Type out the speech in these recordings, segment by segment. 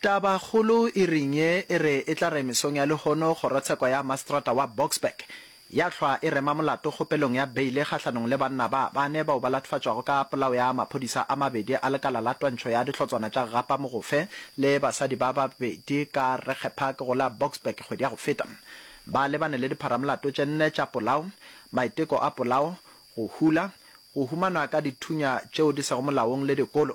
Tabakgolo e reng ye e re e tla re mesong ya lehono kgorotsheko ya maseterata wa Boksburg ya hlwa e rema molato kgopelong ya beile kgahlanong le banna ba bane bao ba latofatšwago ka polao ya maphodisa a mabedi a lekala la twantšho ya dihlotswana tša Gapa Mogofe le basadi ba babedi ka Regge Park go la Boksburg kgwedi ya go feta. Ba lebane le dipharamolato tše nne tša polao, maiteko a polao, go hula, go humanwa ka dithunya tšeo di sego molaong le dikolo.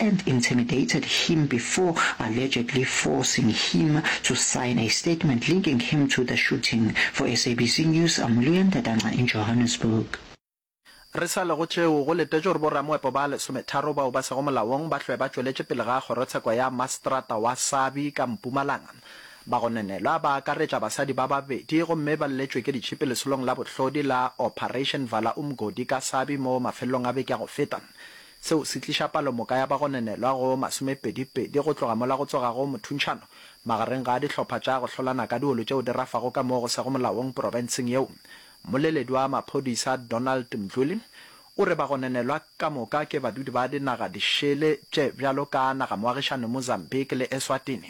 and intimidated him before allegedly forcing him to sign a statement linking him to the shooting. For SABC News, I'm Leon Dadangca in Johannesburg. Re sa le go tšeo, go letetšwe gore bo-ramoepo ba lesometharo bao ba sego molaong ba hlwe ba tšweletše pele ga kgorotsheko ya maseterata wa Sabi ka Mpumalanga. Ba go nenelwa ba akaretša basadi ba babedi gomme ba lletšwe ke ditšhipi lesolong la bohlodi la Operation Vala Umgodi ka Sabi mo mafelelong a beke ya go feta. Seo se tliša palomoka ya bagonenelwa go masomepedipedi go tloga mola go tsogago mothuntšhano magareng ga dihlopha tša go hlolana ka diolo tšeo di rafago ka moo go sego molaong porofenseng yeo. Mmoleledi wa maphodisa Donald Mdluli o re bagonenelwa ka moka ke badudi ba dinaga dišele tše bjalo ka nagamoagišane Mozambique le Eswatini.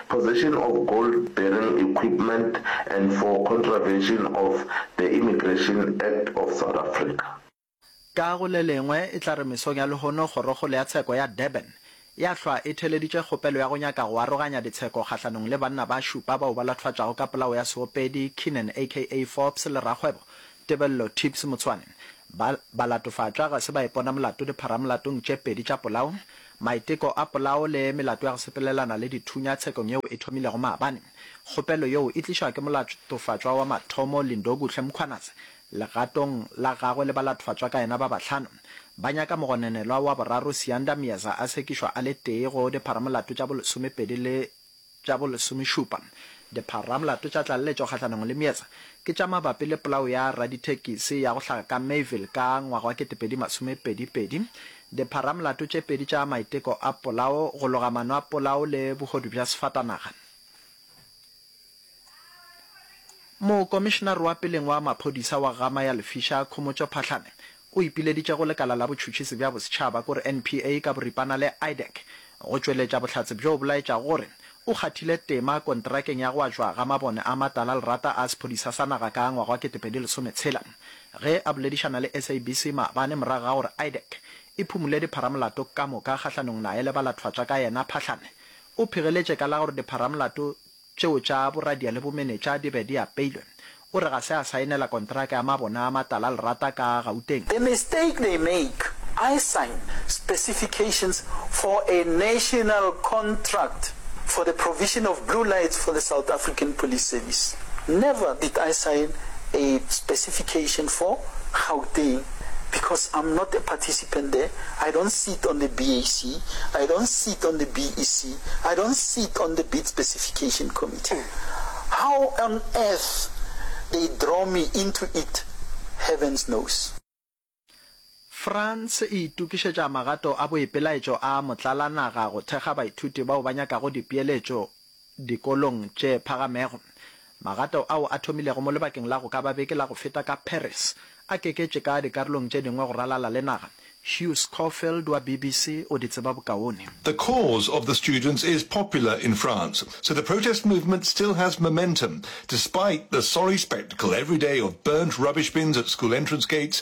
possession of gold bearing equipment and for contravention of the Immigration Act of South Africa. Ka go le lengwe e tla re mesong ya lehono Kgorokgolo ya Tsheko ya Durban ya hlwa e theleditše kgopelo ya go nyaka go aroganya ditsheko kgahlanong le banna ba šupa bao ba lathwatšago ka polao ya seopedi Keenan aka Forbes le rakgwebo Tebello Tips Motsoane ba ba latofatšwa ga se ba ipona molato dipharamolatong tše pedi tša polao Maiteko a polao le melato ya go sepelelana le dithunya tshekong yeo e thomilego maabane. Kgopelo yeo e tlišwa ke molatofatšwa wa mathomo Lindokuhle Mkhwanazi legatong la gagwe le balatofatšwa ka yena ba bahlano. Ba nyaka mogononelwa wa boraro Siyanda Myeza a sekišwa a le tee go dipharamolato tša bolesomepedi le Tša bo lesomešupa, Dipharamolato tša tlaleletšo kgahlanong le meetse ke tša mabapi le polao ya radithekisi ya go hlaga ka Mayville ka ngwaga wa ketepedi masome pedi pedi, dipharamolato tše pedi tša maiteko a polao, go loga mano a polao le bohodu bja sefatanaga. Mokomišenare wa peleng wa maphodisa wa Gama ya Lefisha, Khomotšo Phahlane, o ipileditše go Lekala la Botšhutšhisi bja Bosetšhaba, kore NPA ka boripana le IDAC, go tšweletša bohlatse bjo bo laetšago gore o kgathile tema kontrakeng ya go atšwa ga mabone a matala lerata a sephodisa sa naga ka ngwaga wa ketepedi lesome tshela. Ge a boledišana le SABC maabane morago ga gore IDAC e phumule dipharamolato ka moka kgahlanong naye le ba lathwatswa ka yena, Phahlane o phegeletše ka la gore dipharamolato tšeo tša boradia le bomenetša di be di apeilwe, o re ga se a saenela kontraka ya mabone a matala-lerata ka Gauteng. The mistake they make, I sign specifications for a national contract for the provision of blue lights for the South African Police Service. Never did I sign a specification for Gauteng because I'm not a participant there, I don't sit on the BAC, I don't sit on the BEC, I don't sit on the bid specification committee, how on earth they draw me into it heavens knows. France e itokišetša magato a boipelaetšo a motlalanaga go thekga baithuti bao ba nyakago dipeeletšo dikolong tše phagamego. Magato ao a thomilego mo lebakeng la go ka ba beke la go feta ka Paris a keketše ka dikarolong tše dingwe go ralala le naga. Hugh Scoffield wa BBC o di tseba bokaone. The cause of the students is popular in France, so the protest movement still has momentum despite the sorry spectacle every day of burnt rubbish bins at school entrance gates,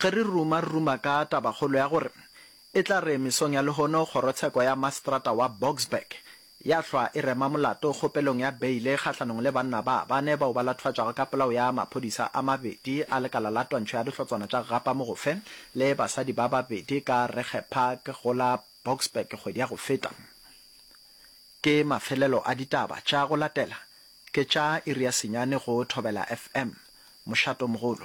Ge re ruma re ruma ka tabakgolo ya gore e tla re mesong ya lehono kgorotsheko ya maseterata wa Boksburg ya hlwa e rema molato kgopelong ya beile kgahlanong le banna ba bane bao ba lathwatšwago ka polao ya maphodisa a mabedi a lekala la twantšho ya dihlotswana tša Gapamogofe le basadi ba babedi ka Regge Park go la Boksburg kgwedi ya go feta. Ke mafelelo a ditaba tša go latela ke tša iri ya senyane go Thobela FM. Mošatomogolo.